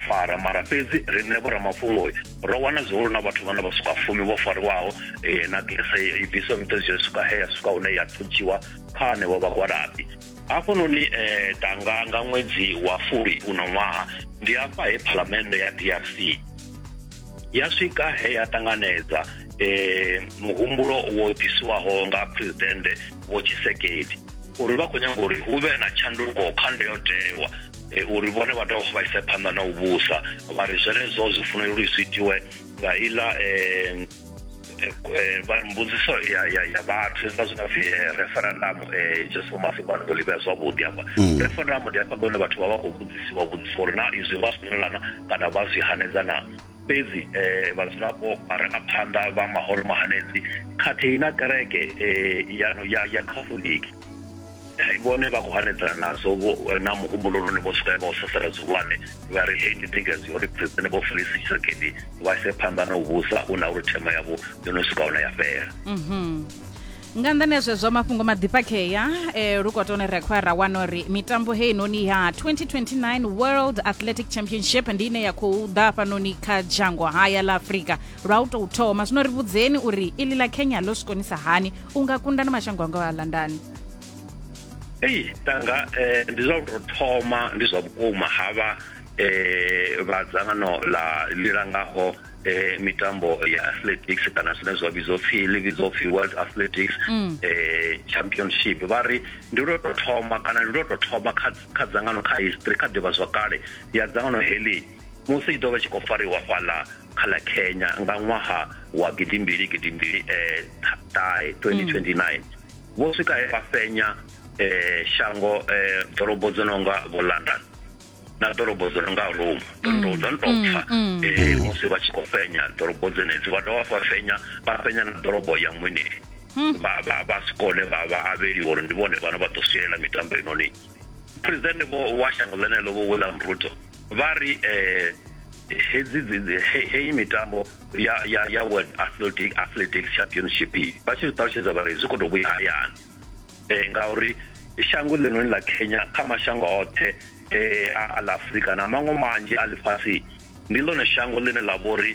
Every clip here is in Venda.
fara mara fhedzi riṋe vhoramafhungo ro wana zwihulu na vhathu vhane vha swika fumi vho fariwaho um na gese i bviswa miṱozi yo swika he ya swika hune ya thutshiwa kha hanevho vhagwalabi hafhanoni um eh, danga nga ṅwedzi wa fuli uno ṅwaha ndi hafha he phalamennde ya drc ya swika he ya ṱanganedza eh muhumbulo wo ḓisiwaho nga president vho tshisekedi uri vha khou nyanga uri hu vhe na tshanduko kha ndayotewa e, uri vhone vha dovha vha ise phanḓa na u vhusa vha ri zwenezwo zwi funela uri zwi itiwe nga iḽa um mbudziso ya ya ya vhathu hezwiḽa zwi nga pfi referendum um just for mafhingwani ndo livhea zwavhuḓi hafha mm. referendum ndi hafha ngone vhathu vha vha khou vhudzisiwa vhudzisa uri na izwi vha swinelana kana vha zwi hanedza na Fhedzi vhadzulapo, vharangaphanḓa vha mahoro mahanedzi khathihi na kereke ya Khatholiki vhone vha khou hanedzana nazwo na muhumbulo lune vho swika vha u sasaladza zwihulwane vha ri hei ndi thikhedzo ya uri Phresidennde Vho Félix Tshisekedi vha ise phanḓa na u vhusa hu na uri themo yavho yo no swika hune ya fhela. nga nḓani ya zwezwo mafhungo maḓifhakhea eh, lukotoni ri khoya ra wana uri mitambo heinoni ya 2029 world athletic championship ndi ine ya khou ḓa hafhanoni kha dzhango haya ḽa afurika lwa u tou thoma zwino ri vhudzeni uri iḽi ḽa kenya ḽo zwi konisa hani u nga kunda na mashango a ngaho a londani ei tanga eh, ndi zwa u tou thoma ndi zwa vhukuma havha eh, vha dzangano ḽa ḽi langaho eh, mitambo ya athletics kana zwine zwa vhidzwa upfhi ḽi vhidzwa upfhi world athletics mm. eh, championship vha ri ndi lwo to thoma kana ndi lwo to thoma kha, kha dzangano kha history kha ḓivha zwa kale ya dzangano heḽi musi i ḓo vha tshi khou fariwa fhaḽa kha ḽa kenya nga ṅwaha wa gidimbili gidimbili eh, ṱahe 2029 mm. vho swika he vha fenya eh, shango eh, ḓorobo dzo no nga vho london na ḓorobo dzo nonga rome ḓorobo dzo no tou pfa musi vha tshi khou fhenya ḓorobo dzenedzi vha dovha vha fhenya vha fhenya na ḓorobo ya mweneli vha vha vha si kone vha vha avheliwa uri ndi vhone vhane vha ḓo sielela mitambo inoni presidente vho wa shango ḽeneḽo vho william ruto vha ri um hedzi heyi mitambo ya ya ya world athletic athletic championship vha tshi zwi ṱalutshedza vha ri zwi khou tou vhuya hayani eh, ngauri shango ḽinoni ḽa kenya kha mashango oṱhe eh, a ḽa afurika na maṅwe manzhi a ḽifhasi ndi ḽone shango ḽine ḽa vhori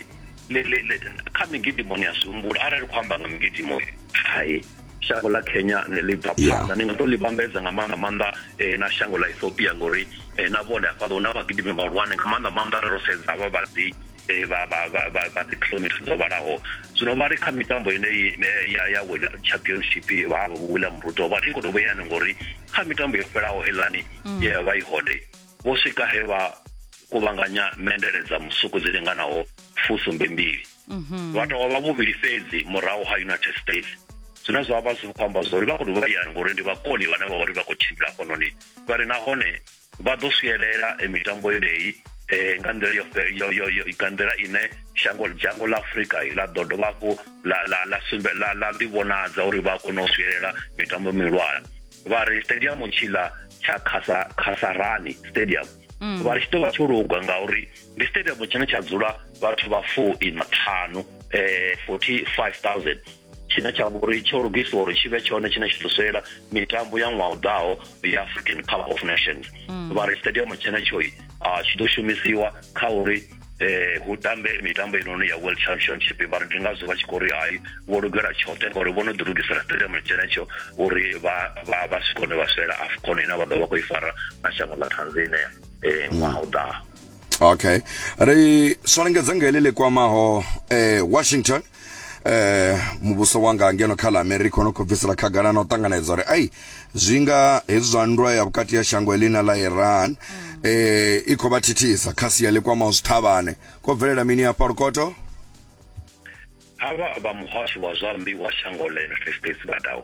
kha migidimo ni a zwi humbula arali khou amba nga migidimo hai shango ḽa kenya ne ḽi bva phanḓa ni nga to ḽi vhambedza nga maanḓa maanḓa eh, na shango ḽa ethiopia ngori eh, na vhone hafhaḽa hu na vhagidimi vhahulwane nga maanḓa maanḓa ro sedza vha vhadzi eh, vha vha vha vha vha dzi kilometres dzo vhalaho zwino vha ri kha mitambo ine ya ya wina championship vha vha wina muruto vha ri ngoto vheyana ngori kha mitambo yo fhelaho helani mm. ye vha i hode vho swika he vha kuvhanganya mendele dza musuku dzi linganaho fusumbe mbili mhm. vha tovha vha vhuvhili fhedzi murahu ha united states zwine zwa vha zwi khou amba zwori vha khou dovha yani ngori ndi vhakoni vhane vha uri vha khou tshimbila hafhanoni vha ri nahone Vha ḓo swielela mitambo yeneyi nga nḓila yo yo yo yo nga nḓila ine shango dzhango ḽa Afrika ḽa ḓo dovha hafhu ḽa ḽa ḽa sumbe ḽa ḽa ḓi vhonadza uri vha a kona u swielela mitambo mihulwane vha ri stadium tshiḽa tsha khasa khasarani stadium mm. vha ri tshi ḓo vha tsho luga ngauri ndi stadium tshine tsha dzula vhathu vha 4 ina ṱhanu eh 45000 tshine tsha vha uri tsho lugiswa uri tshi vhe tshone tshine tshi ḓo swela mitambo ya ṅwaha u ḓaho ya african cup of nations mm. vha ri stadium tshenetsho ah, tshi ḓo shumisiwa kha uri eh hu tambe mitambo inoni ya world championship vha ri ndi ngazwo vha tshi khou ri hai vho lugela tshoṱhe ngauri vho no ḓi lugisela stadium tshenetsho uri vha vha vha si kone vha swela afcon ine vha ḓo vha khou i fara na shango ḽa tanzania eh ṅwaha u ḓaho okay ri swalengedza nga heḽi ḽi kwamaho eh washington eh muvhuso wanga ngeno kha ḽa america ono khou bvisela khagala na u ṱanganedza uri ai zwi nga hezwi zwa nndwa ya vhukati ya shango eḽi na ḽa iran mm. eh i khou vha thithisa kha sia ḽi kwamaho zwithavhane ko bvelela mini hafha lukoto havha vha muhasho wa zwa mmbi wa shango la united states vha dawo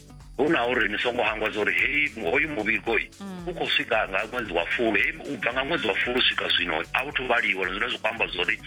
hu na uri ni songo hangwa zwa uri heyi hoyu muvhigo mm. u khou swika nga ṅwedzi wa fulu heyi u bva nga ṅwedzi wa fulu swika zwino a u thu vhaliwa zwine zwi khou amba zwa uri